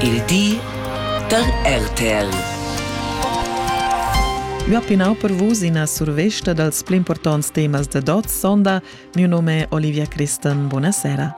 Il di da RTL. Ua pinau per vus ina survesta dals pli importants temas da dot sonda. Mio nome è Olivia Christen. Buonasera.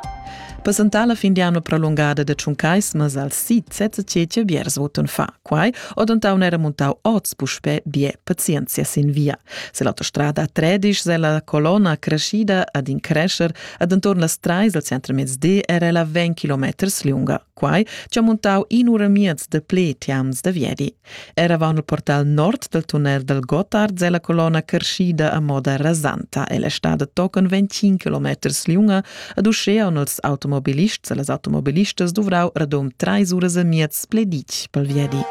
Presentar la fin di anno prolungada de Tschuncaismas al sit Zezzetschetje Bierswoten fa. Quai odontaun era muntau oz puspè bia pazienzia sin via. Se l'autostrada Tredisch se la colonna crescida ad in crescer ad intorn las trais al centremezdi era ella 20 kilometers lunga. Quai ci ha muntau in ura miez de ple tiams da viedi. Era va il portal nord del tunnel del Gotthard se la colonna crescida a moda rasanta. Ella sta da tochen 25 kilometers lunga Ed uschea on els automobilists e las automobilistas duvrau radom treis uras e miez pleditg pel viedi.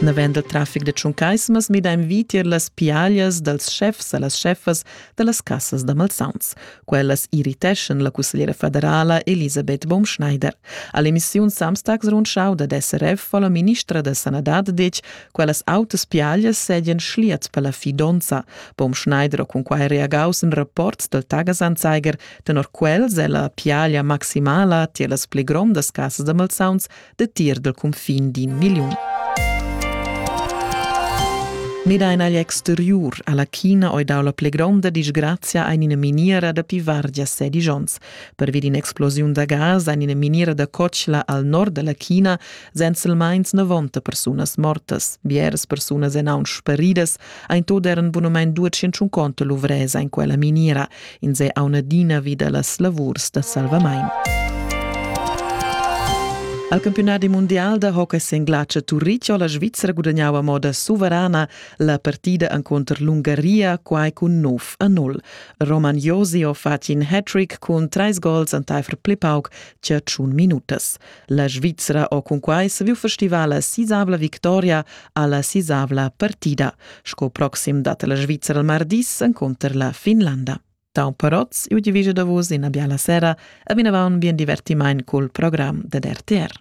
Navend il trafic de Tschuncaismas mida in vitier las piaglias dals chefs e las chefas de las cassas da Malsauns. Quellas irriteschan la cussegliera federala Elisabeth Baumschneider. All'emissiun Samstags rundschau dad SRF fa la ministra da sanadad detg Quellas autas piaglias sedien schliats per la fidonza. Bom Schneider ha cunquai reagaus in rapport del Tagesanzeiger, tenor quels è la piaglia maximala tier las pli grondas casas da malsauns de tier del confin d'in milliun. Mida in agl exteriur alla China oi dau la pli gronda disgrazia ein ina miniera da pivargia sedigions. Per vid in explosiun da gas ein ina miniera da cotschla al nord dalla China Senselmeins 90 persunas mortas, bieras persunas en aun sparidas, ein tot eran bunamein 250 luvresa in quella miniera, in se aunadina vida las lavurs da salvamain. Al campionati mondial da hockey singlace Turich ho la Svizzera gudagnau a moda suverana la partida contro l'Ungaria quai cun 9 a 0. Roman Josi ho fatg in hat-trick cun treis gols enteifer pli pauc che tschun minutas. La Svizra ho cunquai saviu festivar la sisavla victoria alla sisavla partida. Sco proxim dat la Svizra il mardis encunter la Finlanda. Tau parots, iu divigia da vos ina biala sera e vinavon bien divertimaint col program ded RTR.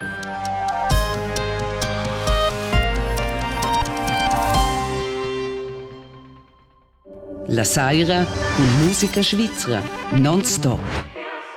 La saira cun musica svizra, non stop.